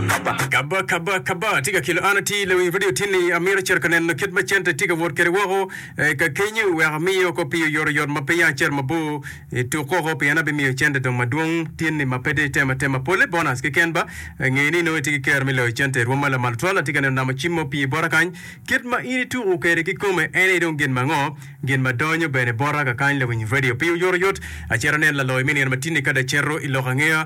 Kaba, kaba, kaba! Atye ka kelo an atir lawiny radio tini. Amito cito ka neno kit ma cente tye ka wot kwede woko eh, ka kenyu wek amiye oko pi oyoto yot ma pe ya acito mabor eh, tuk woko pien abimiyo cente dong madwong tini ma pe de item atema. Pole bonus keken ba, eh, nge ni nongo itye ki kero me loyo cente. Rwoma lamal tutwal, atye ka neno namo cim ma opye bota kany. Kit ma in ituku kwede ki kome en aye dong gin ma ango? Gin ma donyo bene bota kakany lawiny radio pi oyoto yot. Acito aneno laloyo me nino matini ka dong acito iloko angeya.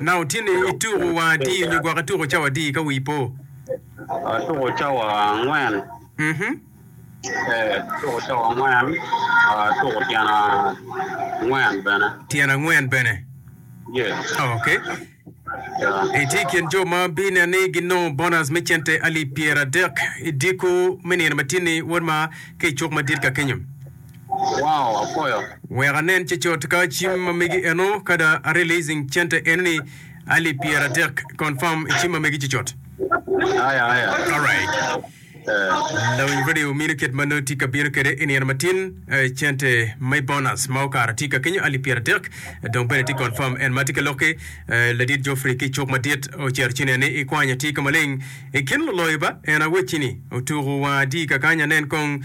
Nanga otye ni ituko wa adi nyo gwok ituko cawa adi ka wii po? Atuko cawa angwen. Atuko cawa angwen. Atuko tyen angwen bene. Tyen angwen bene? Ok. Itye i kin jo ma binen ni ginongo bonas me cente alip pyeradek i diko me nino matini, Wod ma, ki i cuk madit ka kenyo? Wek anen cecot ka cim ma megi eno kada a releasing cente eno ni Ali pyera adek confirm i cim ma megi cecot. Alright. Lawiny radio mino kit ma nongo tye ka bino kede i nino matin cente me bonus ma okara tye ka kenyo ali pyera adek dong bene tye confirm en ma tye ka lokke ladit Geoffrey ki cuk madit ocero ci nen ni i kwanya tye ka maleng i kin luloyo ba en awecci ni otuku wanga adi kakany anen kong